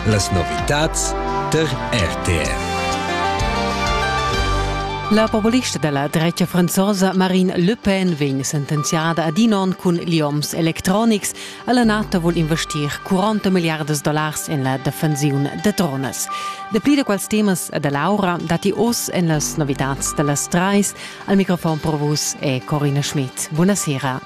Las novitads tar RTR. La populistica della drecha franzosa Marine Le Pen vegn sentenziada ad in onn cun lioms electronics. Alla NATO vul investir 40 miliardas dollars en la defensiun de tronas. Dapli da quals temas e dell'aura dati oz en las novitats dellas treis. Al microfon pro vus è Corina Schmidt. Buonasera.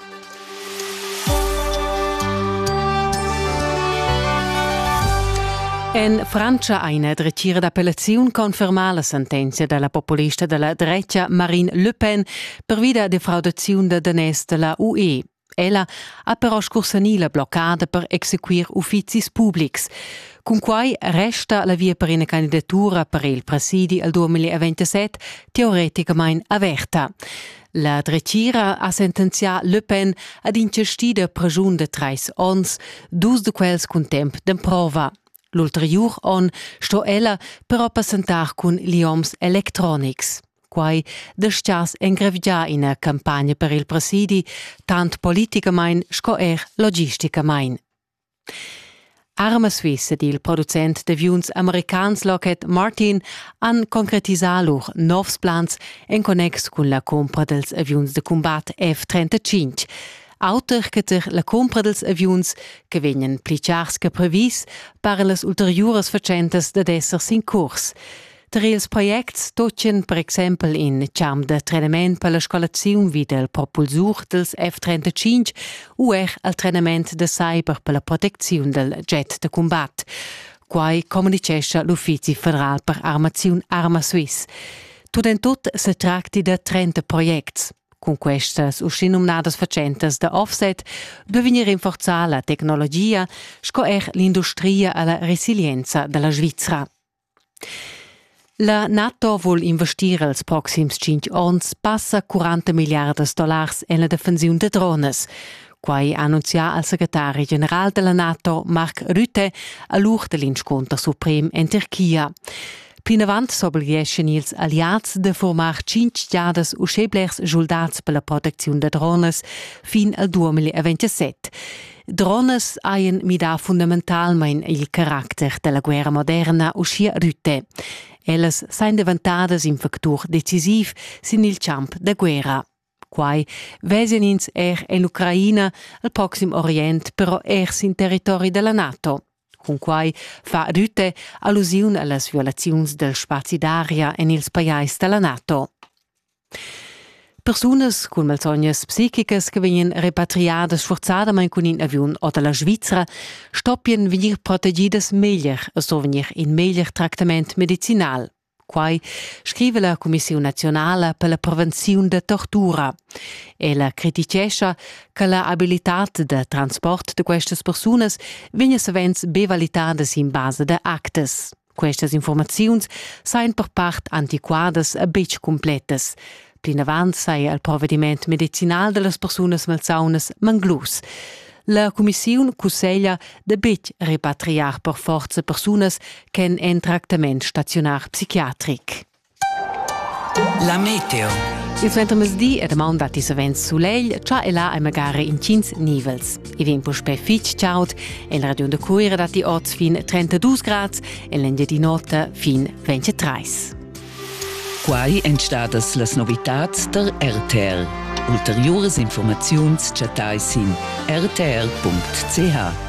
En Francia ha ina dretgira d'appellaziun confermà la sentenzia da la populista da la drecha Marine Le Pen pervi da defraudaziun da daners da la UE. Ella ha però scursanì la bloccada per exequir uffizis publics. Cunquai resta la via per ina candidatura per il presidi al 2027 teoreticamain averta. La dretgira ha sentenzià Le Pen ad inchestì da pregiun de trais ons, dus de quels cun temp d'emprova. L'ulteriur on sto ella però passentar cun lioms electronics. Quai destias engravgiar ina campagna per il presidi, tant politicamain sco er logisticamain. Arma Swiss ed il producent d'aviuns americans Lockheed Martin han concretisà lur novs plans en connex cun la cumpra dals aviuns da cumbat F-35. Auter che tar la cumpra dals aviuns che vegnan pli chars che previs, paran las ulteriuras fatschentas dad esser sin curs. Tar ils projects tutgan per exempel in charm da trenament per la scolaziun vi dal propulsur dals F-35 u er al trenament da cyber per la protecziun dal jet da cumbat. Quai communitgescha l'Uffizi federal per armaziun Arma Swiss. Tut en tut se tracti da 30 projects. Cun questas uschinumnadas fatschentas da offset duvegnir rinforzà la tecnologia sco er l'industria a la resilienza da la Svizra. La NATO vul investir els proxims tschintg onns passa 40 milliardas dollars en la defensiun da dronas. Quai ha annunzià il secretari general della NATO Mark Rutte a l'ur dell'inscunter suprem en Turchia. Plinavant s'oblieschan ils alliads da formar cinc giadas uschè blers schuldats per la protecziun da dronas fin al 2027. Dronas hajan midà fundamentalmain il caracter da la guerra moderna, uschia Rütte. Ellas sain devantadas in factur decisiv sin il champ da guerra. Quai vezian ins er en Ucraina, al Proxim Orient, però er sin territori da la NATO. Cunquai fa Rütte allusiun a las violaziuns dal spazi d'aria en ils pajais da la NATO. Persunas cun malsognas psichicas che vegnan repatriadas sfurzadamain cun in aviun ota la Svizra stoppien vegnir protegidas meglier e sto vegnir in meglier tractament medicinal. Quai scrive la Cumissiun naziunala per la prevenziun da tortura. Ella criticescha che la abilitad da transport da questas persunas vegna savens be validada sin basa da actas. Questas informaziuns sajan per part antiquadas e betg cumplettas. Plinavant saja il provediment medicinal da las persunas malsaunas manglus. La cumissiun cusseglia da betg repatriar per forza persunas ch'èn en tractament staziunar psichiatric. La meteo. Il suentermezzdi e damaun datti savens sulegl, cha e là hai magari intgins nivels. I vegn puspè fitg chaud, en la regiun da Cuira datti oz fin 32 grads, en l'Engiadin'Ota fin 23. Quai èn stadas las novitads der RTR. Ulteriuras informaziuns chattai sin rtr.ch.